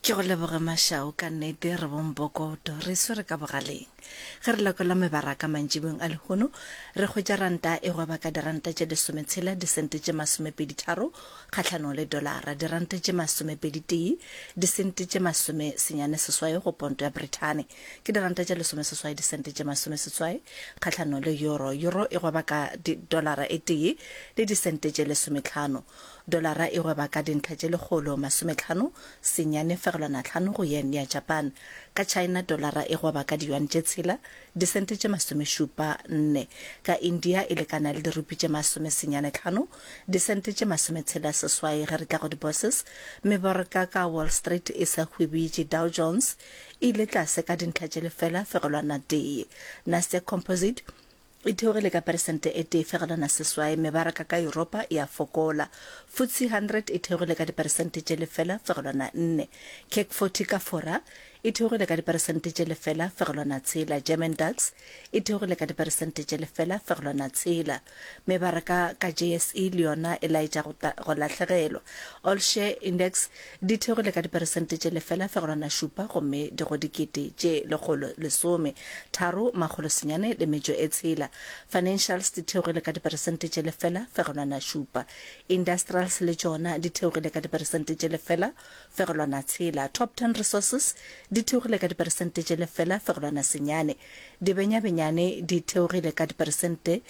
ke go leboge mašao ka nnete re bompokoto re swere ka bogaleng ge re lekola mebaraka mantšibong a lehono re hwetša ranta e gweba ka diranta tše lesometshela disente tše masomepeditharo kgahlanong le dolara diranta tše masomepeditee disente tše masome senyane seswai go ponto ya brithane ke diranta tše lesomeseswai disente tše masomeseswai kgahlanong le euro euro e gweba ka dolara e tee le disente tše lesometlhano Dolara e gweba ka dintlha tše lekgolo masometlhano senyane fegelwana tlhano go yen ya Japan. Ka China dolara e gweba ka diyuan tše tshela disente tše masomešupa nne. Ka India e lekana le dirupi tše masome senyane tlhano disente tše masometshela seswai ge re tla go di-bourses. Mebaraka ka Wall Street e sa hwibiitše Dow Jones e ile tlase ka dintlha tše lefela fegelwana tee. Nasdaq Composite e theogile ka peresente e tee fegelwana seswai, mebaraka ka Yuropa e a fokola. FTSE 100 e theogile ka diperesente tše lefela fegelwana nne. CAC 40 ka Fora e theogile ka diperesente tše lefela fegelwana tshela. German DAX e theogile ka diperesente tše lefela fegelwana tshela. Mebaraka ka JSE le yona e laetša go lahlegelwa. All Share Index Di theogile ka diperesente tše lefela fegelwana šupa gomme di go dikete tše lekgolo lesome tharo makgolo senyane le metšo e tshela. Financials di theogile ka diperesente tše lefela fegelwana šupa. Industrials le tšona di theogile ka diperesente tše lefela fegelwana tshela. Top Ten Resources di theogile ka diperesente tše lefela fegelwana senyane. Dibenyabenyane di theogile ka diperesente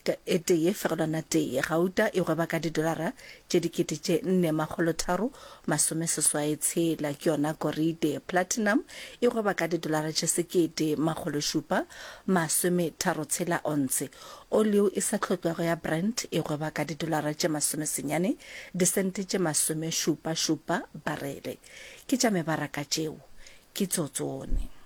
T e tee fegelwana tee gauta e gweba ka didolara tše dikete tše nne makgolo tharo masome seswae tshela, ke yona gorite. Platinum e gweba ka didolara tše sekete makgolo šupa masome tharo tshela ontshe. Oleo e sa hlotlwago ya Brent e gweba ka didolara tše masome senyane disente tše masome šupa šupa barele. Ke tša mebaraka tšeo. Ke tso tsone.